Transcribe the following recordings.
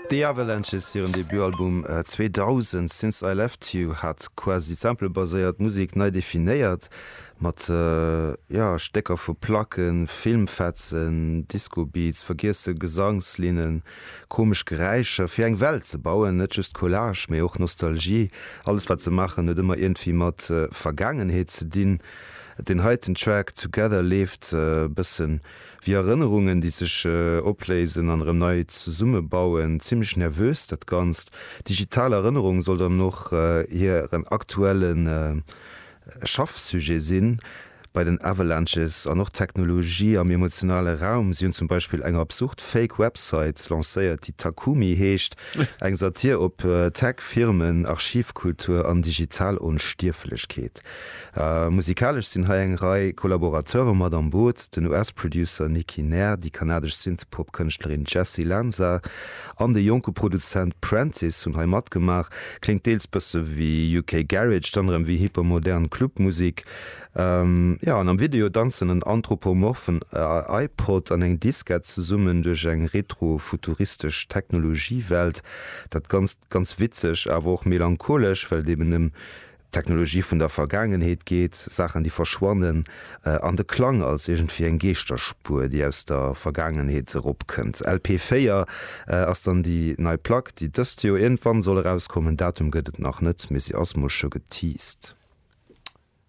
The Avalanches hiren Debutalbum 2000, Since I Left You, hat quasi samplebaséiert Musek nei definéiert, mat jo Stécker vu Placken, Filmfetzen, Discobeats, vergiesse Gesangslinnen, komesch Geräischer, fir eng Welt ze bauen, net just Collage, mee och Nostalgie. Alles wat se maachen huet ëmmer iergendwéi mat Vergaangenheet ze dinn. Den heiten Track Together leeft e bëssen Wéi Erënnerungen, déi sech opléisen an erëm nei zesummebauen. Zimmlech nervös dat Ganzt. Digital Erënnerung soll dann och hiren aktuelle Schaffsujet sinn bei den Avalanches. An och d'Technologie am emotionale Raum. Si hunn zum Beispill eng absurd Fake Website lancéiert, déi Takumi heescht, eng Satir op Tech-Firmen, Archivkultur an digital Onstierflechkeet. Musikalesch sinn hei eng Rei Kollaborateure mat am Boot, den US-Producer Nicky Nair, déi kanadesch Synthpop-Kënschtlerin Jessie Lanza an de jonke Produzent Prentice hunn hei matgemaach. Kléngt deels bësse wéi UK Garage, dann erëm wéi hypermodern Clubmusek. Jo, an am Video danzen en anthropomorphen iPod an eng Diskett zesummen duerch eng retro-futuristesch Technologie-Welt. Dat Ganzt ganz witzeg, awer och melancholesch, well et eben ëm Technologie vun der Vergaangenheet geet, Saachen déi verschwannen, an de Klang als iergendwéi eng Geeschterspuer déi aus der Vergaangenheet eropkënnt. LP 4 ass dann déi nei Plack déi dëst Joer iergendwann soll erauskommen. Datum gëtt et nach net, mee si ass mol scho geteased.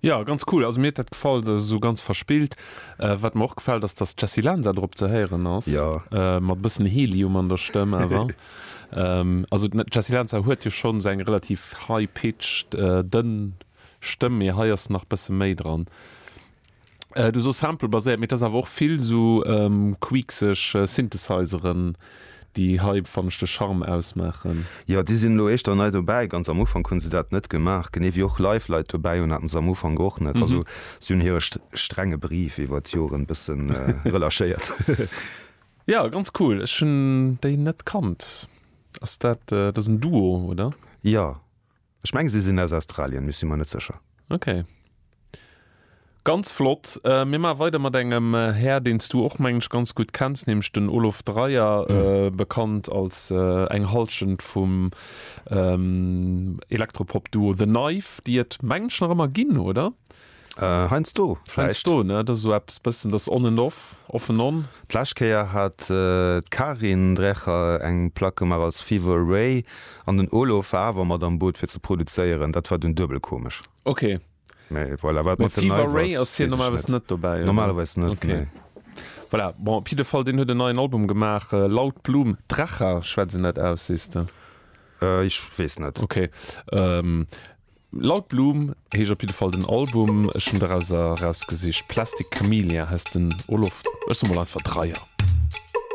Jo ganz cool, also mir huet dat gefall, se ass esou ganz verspillt. Wat mer och gefält ass dass d'Jessy Lanza drop ze héieren ass, mat e bëssen Helium an der Stëmm awer. Also d'Jessie Lanza huet jo schonn esou eng relativ high-pitched, dënn Stëmm, mee hei ass nach e bësse méi dran. Du sos Sample-baséiert, mee et ass awer och vill esou queekseg Synthesizeren, déi hei, fannen ech, de Charme ausmaachen. Jo, déi sinn elo éischter nei dobäi. Ganz am Ufank hu se dat net gemaach, genee wéi och live Leit dobäi hunn, haten se am Ufank och net. Also si hunn hire strenge Brief iwwer d'Joren e bësse relâchéiert. Ja ganz cool, ech hun déi net kannt. Ass dat, dat ass en Duo oder? Jo, ech mengen si sinn aus Australien, mee ech si mer net sécher. Ok, ganz flott. Mir maache weider mat engem Här, deen s du och mengen ech ganz gutt kenns, nämlech den Olof Dreyer, bekannt als eng Hallschent vum Elektropop-Duo The Knife, déi et mengen ech nach ëmmer ginn, oder? Heiansdo vläicht. Heiansdo, ne? Dat ass esou eppes bëssen, dat ass on and off, off and on. D'lescht Kéier hat d'Karin Drecher eng Plack gemaach als Fever Away an den Olof war awer mat am Boot fir ze produzéieren. Dat war dunn duebel komesch. Ok. Mee voilà, wat mat den Neiwass weess ech net. Mee Fever Away ass hien normalerweis net dobäi, oder? Normalerweis net, nee. Ok. Voilà, bon, op jidde Fall, deen huet en neien Album gemaach, Laut Blum, Drecher schwätzt een dat aus, sees de? Ech weess net. Ok. Laut Bloom heescht op jiddefall den Album, ech hunn derauser erausgesicht Plastic Camellia heisst den Olof, ech soe mol einfach Dreier.